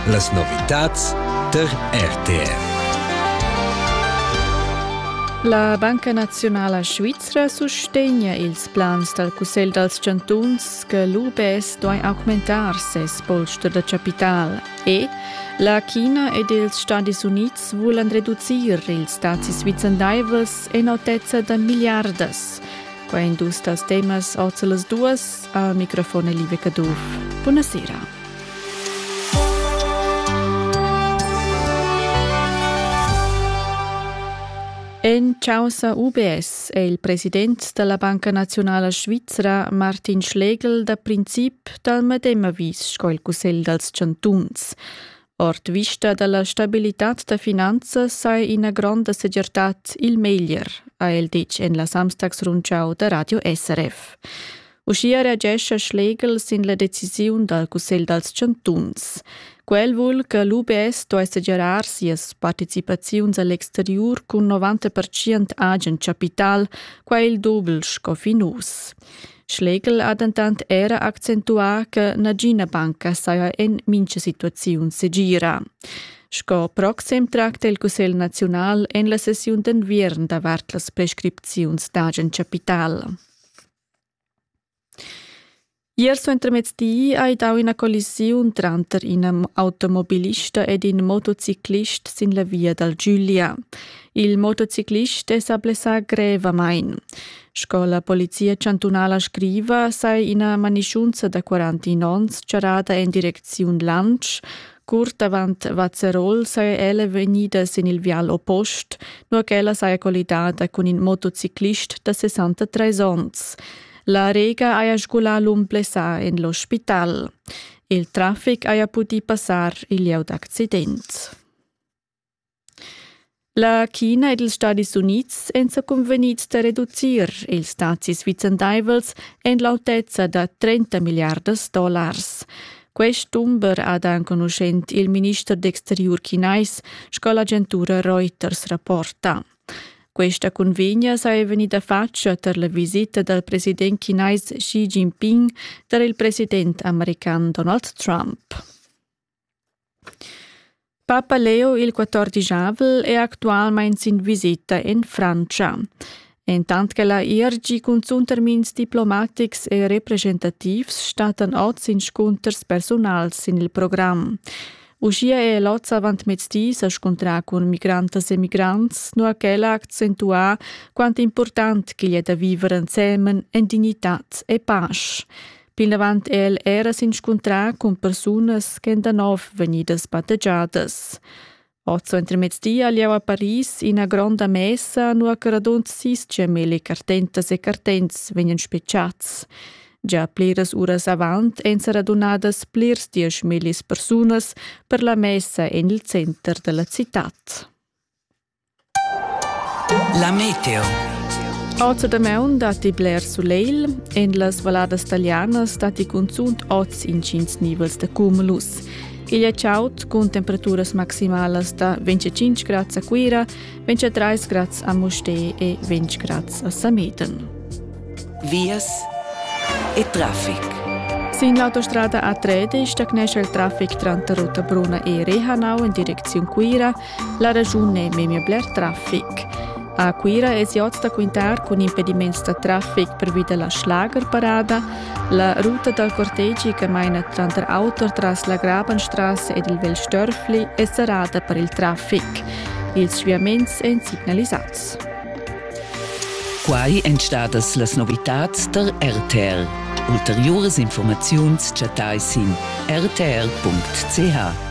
Las novitads tar RTV. La Banca Nazionala Svizra sustegna ils plans dal Cussegl dals chantuns che l'UBS duai augmentar ses polster da chapital e la China ed ils Stadis Unids vulan reducir ils dazis vicendaivels en autezza da milliardas. Quai in dus das temas ord las duas a microfon Live Caduff. Buona sera. En causa UBS è il president della Banca Nazionale Svizzera Martin Schlegel da princip dal medem avis sco il Cussegl dals Chantuns. Ord vista dalla stabilitad da finanzas sai ina gronda segirtad il meglier, ha el ditg en la Samstagsrundschau da Radio SRF. Uschia reagescha Schlegel sin la decisiun dal Cussegl dals chantuns. Quel vul che l'UBS sto segirar sias participaziuns all'exteriur cun 90% agen chapital, quai il doble sco fin uss. Schlegel ha dentant era accentuà che nagina banca saja en mintga situaziun segira. Sco proxim tracta il Cussegl naziunal en la sessiun d'enviern davart las prescripziuns d'agen capital. Ier suentermezdi hai dau ina collisiun tranter in automobilista ed in motociclist sin la via dal Giulia. Il motociclist è sa blessà grevamain. Sco la Polizia chantunala scriva, sai ina manischunza da 41 onns charrada en direcziun Lansch. Curt avant Vazzerol saja ella vegnida sin il vial oppost, nur ch'ella saja collidada cun in motociclist da 63 onns. La Rega haja sgulà l'um blessà en l'ospital. Il traffic haja pudì passar il lieu d'accident. La China ed ils Stadis Unids èn sa cunvegnids da reducir ils dazis vicendaivels en l'autezza da 30 milliardas dollars. Quest dumber ha da enconuschent il minister d'exteriur chinais sco l'agentura Reuters rapporta. Questa convegna saja vegnida fatga tar la visita dal president chinais Xi Jinping tar il president american Donald Trump. Papa Leo il quattordischavel è actualmain sin visita en Frantscha. Entant che la IRG cunzunt termins diplomatics e representativs stattan oz inscunters persunals sin il program. Uschia è l'oz avantmezdi sa scontrà cun migrantas e migrants, nua ch'el ha accentuà quant important ch'igl è da viver ensemen en dignitad e pasch. Plinavant è el era s'inscuntrà cun persunas ch'èn da nov vegnidas battegiadas. Otto entremezdi ha lieu a Paris ina gronda messa, nua che radund sis gemeli cartentas e cartents vegnan spetgads. Gia pliras uras avant èn sa radunadas plirs dieschmillis persunas per la messa en il center da la citad. La meteo. Oz a damaun datti bler sulegl. En las valladas talianas datti cunzunt oz intgins nivels da cumulus. Igl è chaud cun temperaturas maximalas da 25 grads a Cuira, 23 grads a Mustér e 20 grads a Sameten. Vias e traffic. Sin l'autostrada A3 stagnesce il traffic tranter Rotta Bruna e Rehanau in direcziun Cuira La raschun ei memia bler traffic. A Cuira esi oz da quintar cun impediments da traffic pervi dalla schlagerparada, la ruta dal cortegi che maina tranter auto tras la Grabenstrasse ed il Vel Störfli è serrada per il traffic. Ils sviaments èn signalisads. Quai èn stadas las novitads tar RTL. Ulteriuras informaziuns chattai sin rtl.ch.